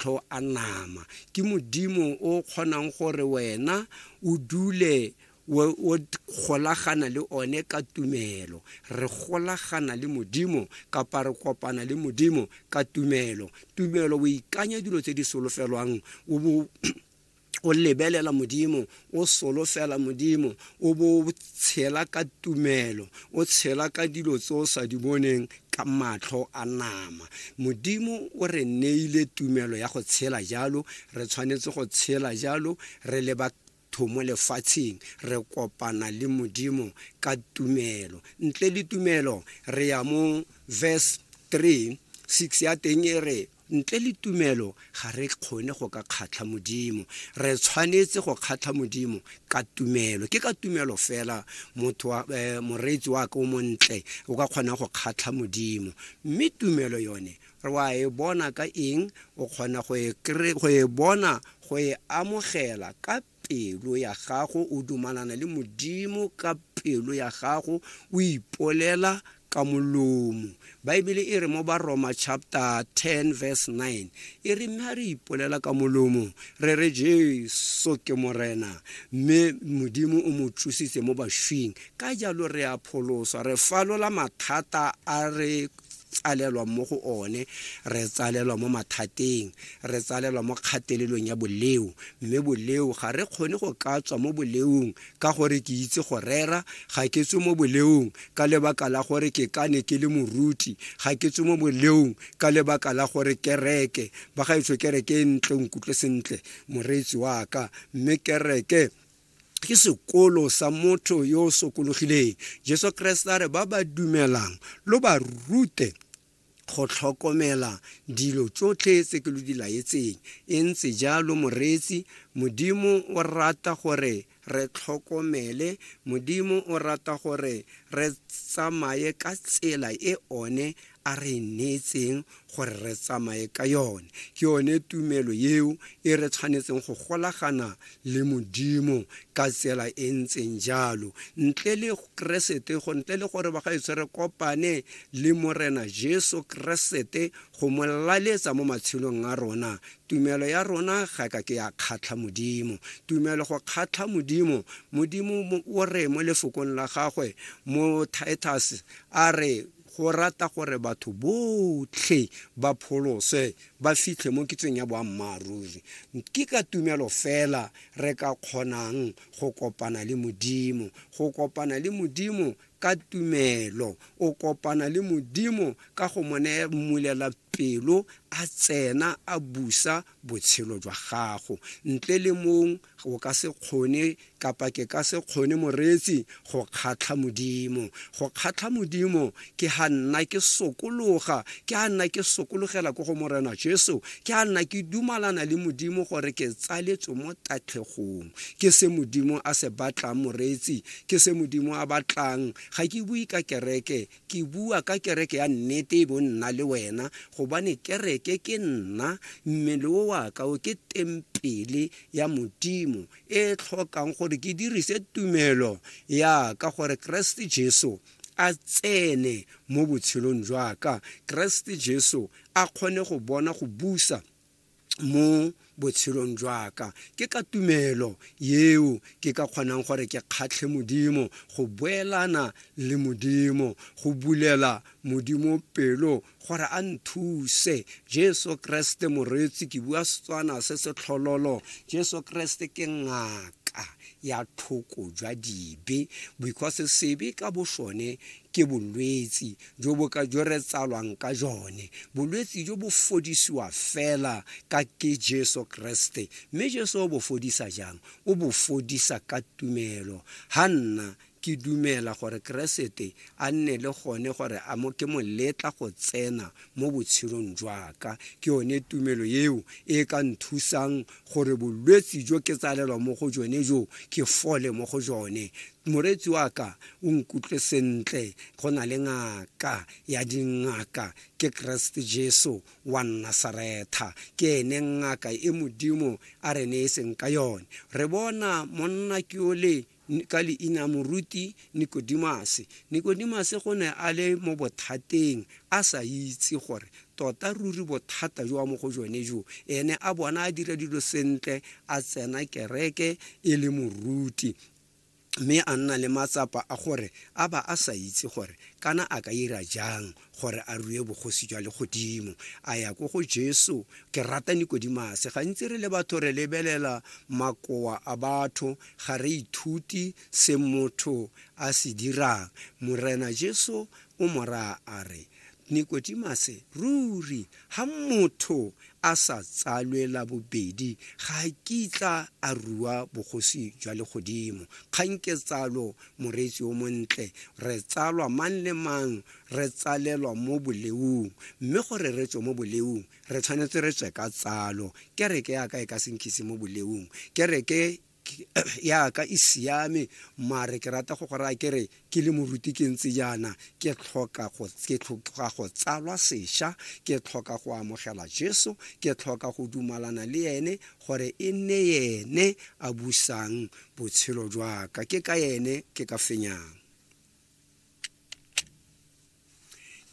matlho a nama ke modimo o kgonang gore wena o dule o o golagana le one ka tumelo re golagana le modimo kapa re kopana le modimo ka tumelo tumelo o ikanya dilo tse di solofelwang o bo o lebelela modimo o solofela modimo o bo o tshela ka tumelo o tshela ka dilo tse o sa di boneng ka matlho a nama modimo o re neile tumelo ya go tshela jalo re tshwanetse go tshela jalo re le batho mo lefatsheng re kopana le modimo ka tumelo ntle le tumelo re ya mo verse 3 6 ya teng e re Ntle le tumelo ga re kgone go ka kgatlha Modimo. Re tshwanetse go kgatlha Modimo ka tumelo. Ke ka tumelo fela motho wa, eh, moreetsi wa ka o montle o ka kgonang go kgatlha Modimo. Mme tumelo yone re wa e bona ka eng? O kgona go e kry- go e bona go e amogela ka pelo ya gago o dumalana le modimo ka pelo ya gago o ipolela ka molomo baebele e re mo baroma chapter 10 verse 9 e re mme a re ipolela ka molomo re re jesu ke morena mme modimo o mo tsositse mo bashwing ka jalo re a pholoswa re falola mathata a re tsalelwa mo go one re tsalelwa mo mathateng re tsalelwa mo kgatelelong ya boleo mme boleo ga re kgone go ka tswa mo boleong ka gore ke itse go rera ga ke tswe mo boleong ka lebaka la gore ke ka ne ke le moruti ga ke tswe mo boleong ka lebaka la gore kereke ba ga etsho kereke e ntle o nkutlwe sentle moreetsi wa ka mme kereke ke sekolo sa motho yo o sokologileng jesu kreste a re ba ba dumelang lo ba rute go tlhokomela dilo tsotlhe tse ke lo di laetseng e ntse jalo moreetsi modimo o rata gore re tlhokomele modimo o rata gore re tsamaye ka tsela e one a re e neetseng gore re tsamaye ka yone ke yone tumelo eo e re tshwanetseng go golagana le modimo ka tsela e ntseng jalo ntle le keresete go ntle le gore bagaetsho re kopane le morena jesu keresete go mo laletsa mo matshelong a rona tumelo ya rona ga ka ke ya kgatlha modimo tumelo go kgatlha modimo modimo o re mo lefokong la gagwe mo titus a re Go rata gore batho botlhe ba pholoswe ba fitlhe mo kitsong ya boammaaruri. Ke ka tumelo fela re ka kgonang go kopana le Modimo. Go kopana le Modimo ka tumelo, o kopana le Modimo ka go mo mmulela pelo, a tsena a busa botshelo jwa gago ntle le mong o ka se kgone kapa ke ka se kgone moreetsi go kgatlha modimo go kgatlha modimo ke ga nna ke sokologa ke ga nna ke sokologela ko go morena jesu ke ga nna ke dumalana le modimo gore ke tsaletswe mo tatlhegong ke se modimo a se batlang moreetsi ke se modimo a batlang ga ke bue ka kereke Ke bua ka kereke ya nnete e bo nna le wena, gobane kereke ke nna, mmele o wa ka o ke tempele ya Modimo e e tlhokang gore ke dirise tumelo ya ka gore Keresete Jesu a tsene mo botshelong jwa ka, Keresete Jesu a kgone go bona go busa mo botshelong jwa ka ke ka tumelo yeo ke ka kgonang gore ke kgatlhe modimo go boelana le modimo go bulela modimo pelo gore a nthuse jesu kreste moreetsi ke bua setswana se se tlhololo jesu kreste ke ngaka ya tlhoko jwa dibe because sebe ka bosone ke bolwetsi jo bo ka jo re tsalwang ka jone bolwetsi jo bo fodisiwa fela ka ke jesu keresete mme jesu o bo fodisa jang o bo fodisa ka tumelo ga nna ke dumela gore keresete a nne le gone gore a mo ke mo letla go tsena mo botshelong jwaka ke yone tumelo eo e ka nthusang gore bolwetsi jo ke tsalelwa mo go jone jo ke fole mo go jone moreetsi wa ka o nkutlwe sentle go na le ngaka ya dingaka ke keresete jesu wa nnasaretha ke ene ngaka e modimo a re ne e seng ka yone re bona monna ke ole ka leina moruti Nikodimase. Nikodimase go ne a le mo bothateng a sa itse gore tota ruri bothata jo mo go jone jo ene a bona a dira dilo sentle a tsena kereke e le moruti mme a nna le matsapa a gore a ba a sa itse gore kana a ka ira jang gore a rue bogosi jwa legodimo a ya ko go jesu ke rata nikodimase gantsi re le batho re lebelela makoa a batho ga re ithuti se motho a se dirang morena jesu o mo raya a re nikodimase ruri ga motho a sa tsalwela bobedi ga a kitla a rua bogosi jwa legodimo kgang ke tsalo moreetsi o montle re tsalwa mang le mang re tsalelwa mo boleung, mme gore re tswe mo boleung, re tshwanetse re tswe ka tsalo. Kereke ya ka e ka se nkise mo boleung. Kereke ya ka e siame, mare ke rata go go raya ke re, ke le moruti ke ntse jaana, ke tlhoka go, ke tlhoka go tsalwa sesha, ke tlhoka go amogela Jesu, ke tlhoka go dumalana le ene, gore e nne ene a busang botshelo jwa ka. Ke ka ene ke ka fenyang.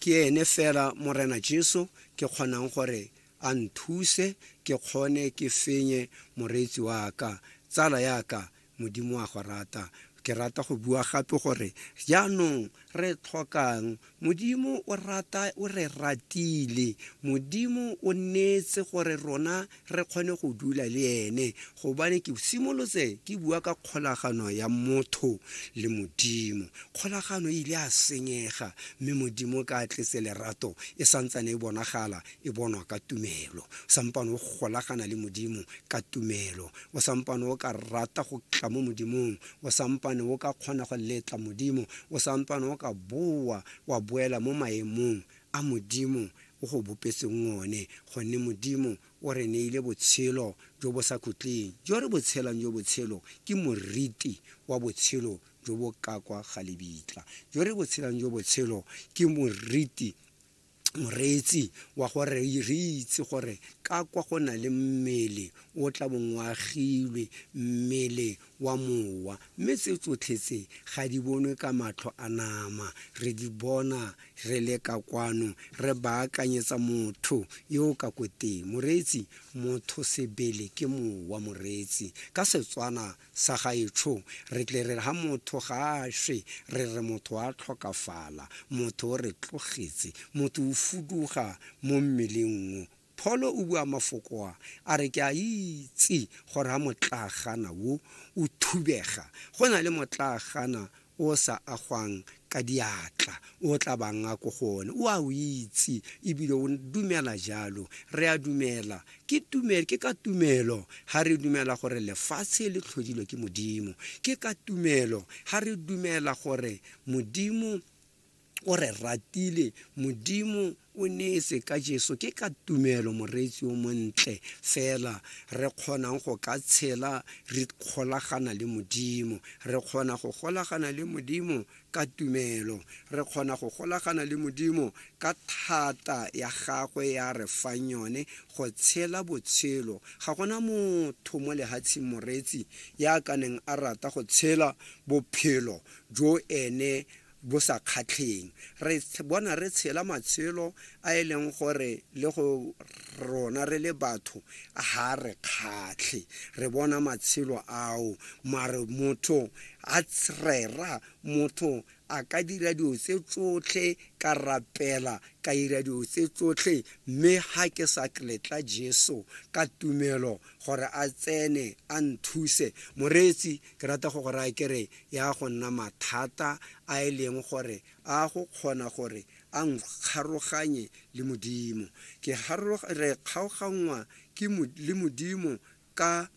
ke ene fela morena jesu ke kgonang gore a nthuse ke kgone ke fenye moreetsi wa ka tsala ya ka modimo wa go rata ke rata go bua gape gore jaanong re tlhokang modimo o rata o re ratile modimo o neetse gore rona re kgone go dula le ene gobane ke simolotse ke bua ka kgolagano ya motho le modimo kgolagano e ile a senyega mme modimo ka tletse lerato e santsane e bonagala e bonwa ka tumelo sampane o golagana le modimo ka tumelo o sampane o ka rata go tla mo modimong o sampane o ka kgona go letla modimo o sampane o ka boa wa boela mo maemong a Modimo o go bopetseng one, gonne Modimo o re neile botshelo jo bo sa khutleng, jo re bo tshelang, jo botshelo ke moriti wa botshelo jo bo ka kwa ga lebitla, jo re bo tshelang, jo botshelo ke moriti, moreetsi wa gore re itse gore ka kwa go na le mmele o tla bong o agilwe, mmele wa Mowa, mme tse tsotlhe tse ga di bonwe ka matlho a nama. Re di bona re le ka kwano, re baakanyetsa motho yo o ka ko teng. Moreetsi, Motho sebele ke Mowa, moreetsi. Ka Setswana sa gaetsho, re tle re re ha motho ga a shwe, re re motho a tlhokafala, motho o re tlogetse, motho o fuduga mo mmeleng o Pholo o bua mafoko a, a re, Ke a itse gore ha motlaagana wo o thubega, go na le motlaagana o o sa agwang ka diatla o o tla bang a ko go one. O a o itse, e bile o dumela jalo. Re a dumela. Ke, tume, ke ka tumelo ha re dumela gore lefatshe le tlhodilwe ke Modimo. Ke ka tumelo ha re dumela gore Modimo o re ratile modimo o neetse ka jeso ke ka tumelo moreetsi o montle fela re kgonang go ka tshela re kgolagana le modimo re kgona go golagana le modimo ka tumelo re kgona go golagana le modimo ka thata ya gagwe ya re fang yone go tshela botshelo ga gona motho mo lehatsheng moreetsi ya ka neng a rata go tshela bophelo jo ene bo sa kgatlheng. Re bona re tshela matshelo a e leng gore le go rona re le batho ga re kgatlhe, re bona matshelo ao. Mare motho a rera, motho a ka dira dilo tse tsotlhe, ka rapela, ka dira dilo tse tsotlhe, mme ga ke sa letla Jesu ka tumelo gore a tsene a nthuse. Moreetsi, ke rata go go raya ke re, ya go nna mathata a e leng gore a go kgona gore a nkgaroganye le Modimo. Ke re kgaoganngwa le Modimo ka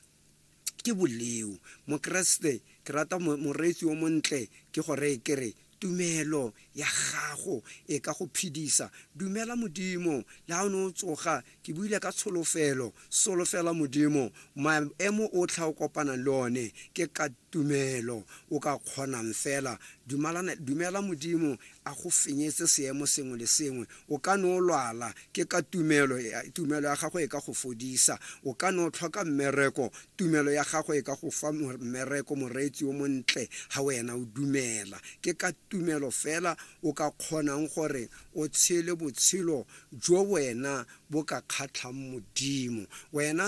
ke boleo. Mokeresete, ke rata moreetsi o montle ke go reye ke re, tumelo ya gago e ka go phedisa. Dumela Modimo le ha o ne o tsoga Ke buile ka tsholofelo. Solofela Modimo. Maemo otlhe a o kopanang le one ke ka tumelo o ka kgonang fela. Dumalana, dumela Modimo a go fenyetse seemo sengwe le sengwe. O ka ne o lwala, ke ka tumelo, tumelo ya gago e ka go fodisa. O ka ne o tlhoka mmereko, tumelo ya gago e ka go fa mmereko, moreetsi yo montle, ha wena o dumela. Ke ka tumelo fela o ka kgonang gore o tshele botshelo jo wena bo ka kgatlhang Modimo. Wena.